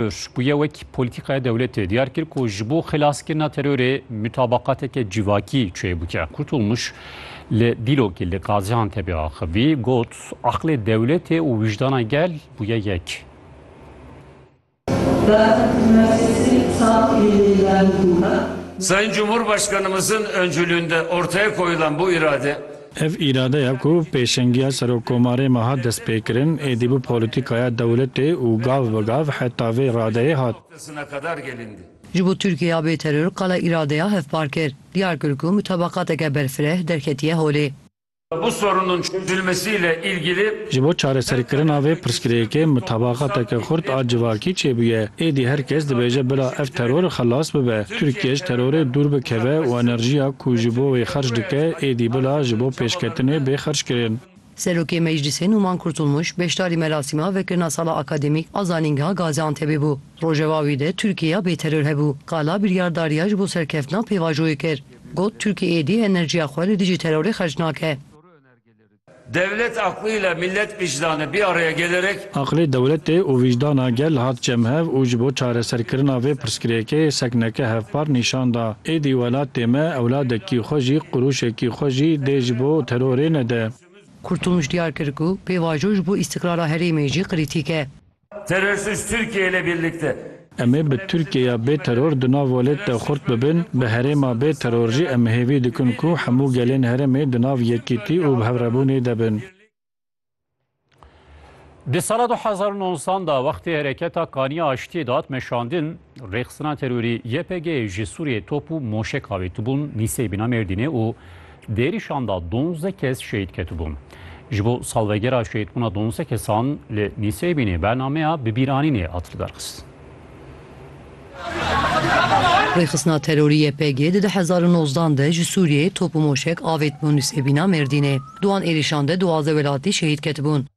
Urs ku ye wek polîtîkaya dewletê diyar kir ku ji bo xelaskirina terorê mutabaqateke civakî çê bike. Kurtulmuş li dîlokê li Gaziantepê axivî got, Aqlê dewletê û wijdana gel bûye yek. Sayın Cumhurbaşkanımızın öncülüğünde ortaya koyulan bu irade, Ev îradeya ku pêşengiya Serokkomarê me hat destpêkirin, êdî bû polîtîkaya dewletê û gav bi gav heta vê radeyê hat. Ji bo Tirkiyeya bêteror qala îradeya hevpar kir. Diyar kir ku mutabaqateke berfireh derketiye holê. Ji bo çareserkirina vê pirsgirêkê mutabaqateke xurt a civakî çêbûye, êdî her kes dibêje bila ev teror xelas bibe. Tirkiye ji terorê dûr bikeve û enerjiya ku ji bo wê xerc dike êdî bila ji bo pêşketinê bê xerckirin. Serokê Meclîsê Nûman Kurtulmuş beşdarî merasîma vekirina sala akademîk a zanîngeha Gaziantepê bû. Rojeva wî de Tirkiyeya bêteror hebû. Qala biryardariya ji bo serkeftina pêvajoyê kir. Got Tirkiye êdî enerjiya xwe li dijî terorê xerc nake. Dewlet aqlî le mîllet vîjdan e bîya rêgelerek. Aqlê dewletê û vîjdana gel hat cemhev û ji bo çareserkirina vê pirsgirêkê sekneke hevpar nîşan da. Êdî welatê me ewladekî xwe jî qurûşekî xwe jî dê ji bo terorê nede. Kurtulmuş diyar kir ku pêvajo ji bo îstiqrara herêmê jî kritîk e. Terörsüz Türkiye ile birlikte. Em ê bi Tirkiyeya bê teror di nav welêt de xurt bibin, bi herêma bê teror jî em hêvî dikin ku hemû gelên herêmê di nav yekîtî û bi hevrebûnê de bin. Di sala du hezar û nozdan de wextê Hereketa Kaniya Aştiyê dihat meşandin, rêxistina terorî YPG'ê ji Sûriyeyê top û moşek avêtibûn Nîseyê bîna Mêrdînê û Di êrîşan de donzdeh kes şehîd ketibûn. Ji bo salvegera şehîdbûna donzdeh kesan li Nîseybînê bernameya bibîranînê hat lidarxistin. Rêxistina terorî YPG di du hezar û nozdan de ji Sûriyeyê top û moşek avêt bo Nîseybîna Mêrdînê. Di wan êrîşan de duwazdeh welatî şehîd ketibûn.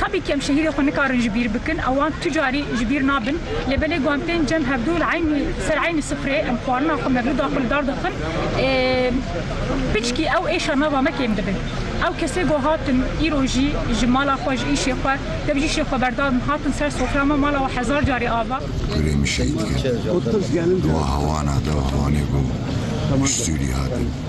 Tevî kem şehîdê xwe nikarin ji bîr bikin û wan tu carî ji bîr nabin. Lê belê wan tên cem hevdu li eynî ser eynî sufrê em xwarina xwe mevlûda xwe li dar dixin. Piçkî ew êşa nava me kêm dibin. Ew kesê ku hatin îro jî ji mala xwe ji îşê xwe dev jî îşê xwe berdabin hatin ser sofra me mala we hezar carî ava. Gulê min şehîd kir. Di weha wana de û di wanê ku ji Sûrî hatin.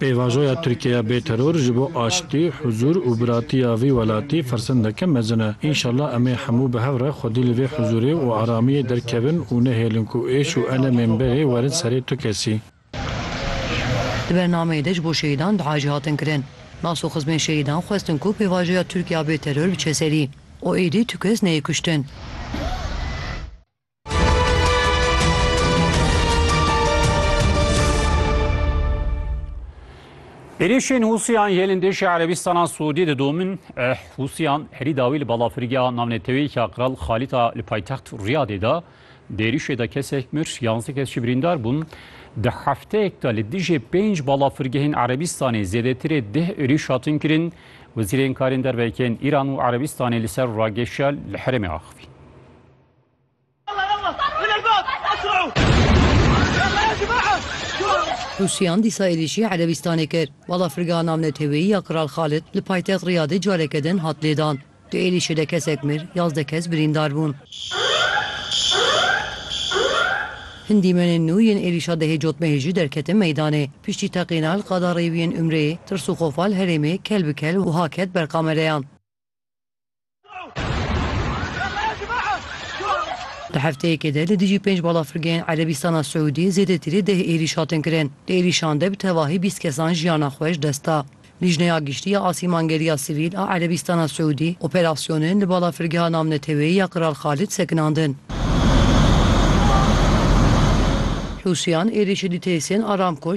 Pêvajoya Tirkiyeya bê teror ji bo aştî, huzûr û biratiya vî welatî firsendeke mezin e. Înşallah em ê hemû bi hev re xwedî li vê huzûrê û aramiyê derkevin û nehêlin ku êş û elemên berê werin serê tu kesî. Di bernameyê de ji bo şehîdan duayê jî hatin kirin. Nas û xizmên şehîdan xwestin ku pêvajoya Tirkiyeya bê teror biçe serî û êdî tu kes neyê kuştin. Êrişên Hûsiyan yê lindêşê Erebîstana Sûdî didomin. Eh, Hûsiyan herî dawî li balafirgeha navneteweyeke Qral Xalîta li paytext Riyadê de di êrişê de kesek mir, yanzdeh kes jî birîndar bûn. Di hefteyek de li dijî pênc balafirgehên Erebîstanê zêdetirê deh êriş hatin kirin. Wezîrên Karên Derve yên Îran û Erebîstanê li ser rageşa li herêmê axivîn. Rûsyan dîsa êrîşî Erebîstanê kir. Balafirgeha navneteweyî ya Kral Xalid li paytext Riyadê careke din hat lêdan. Di êrîşê de kesek mir, yazdeh kes birîndar bûn. Hin dîmenên nû yên êrîşa dehê cotmehê jî derketin meydanê. Piştî teqîna li qada rêwiyên Umreyê, tirs û xofa li herêmê kel bi kel wiha ket ber kamereyan. Di hefteyekê de li dijî pênc balafirgehên Erebîstana Siûdî zêdetî li deh êrîş hatin kirin. Di êrîşan de bi tevahî bîst kesan jiyana xwe ji dest da. Lîjneya Giştî ya Asîmangeriya Sivîl a Erebîstana Siûdî operasyonên li balafirgeha navneteweyî ya Kral Xalid sekinandin. Hûsiyan êrîşê dîteyisên Aramco,